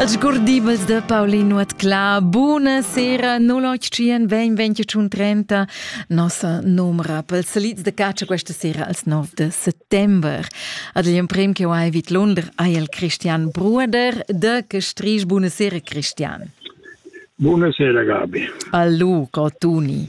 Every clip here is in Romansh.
Els gurdibels de Paulin Nuotclà, buna sera, no l'octien, ben ventiun trenta, nossa numra pels salids de caccia questa sera als 9 de settembre. Ad l'emprem che ho hai vid Lunder hai el Christian Bruder de Gestrich, buna sera Christian. Buonasera Gabi. Allo, Cotuni.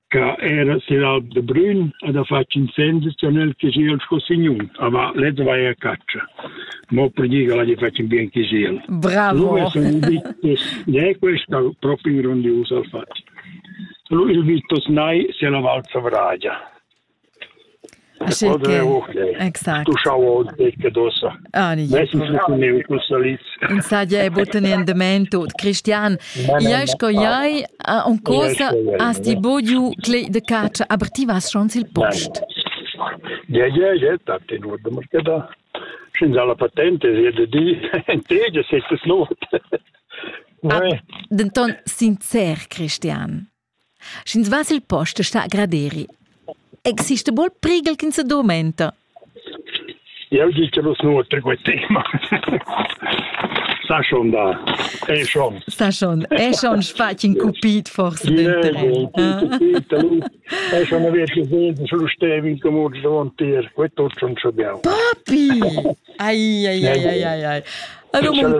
che era sin alp de Brün ad ha fatg incendi con el che sia sco signun, aber lezza vai a caccia. Mo per dire la gli faccio bien che sia. Bravo. Lui è un Vittus, ne questa proprio grandiosa al fatto. Lui il Vittus nai se la val Savragia. Aschi che exact. Tuschau oz becca d'ossa. Ah, ni. Insaglia è butten in dement tut. Cristian, iai sco iai, un cosa has ti bugiu clei de caccia, aber ti vas schon sil post. Ja, ja, ja, dat den nur de markeda. Sin dalla patente sie de di, entegia se es not. Ah, denton sincer, Cristian. Sch'ins va sil post sta graderi. Exista bol prighel ch'ins sedurmenta? Jau di che vus nuotri quei tema. Sta schon da. È schon. Sta schon. È schon sfatg in cupit forse denteren. È schon una vecchia senta, solo stevi in comune davantier. Quei tutto non ce abbiamo. Papi! Ai ai ai ai ai ai. Allora,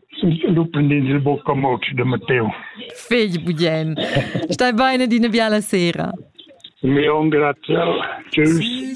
sun sviluppendi il buca moc de Matteo. Fegli Bugien, stai bene di una biala sera. Mi ho graziau. Tschüss.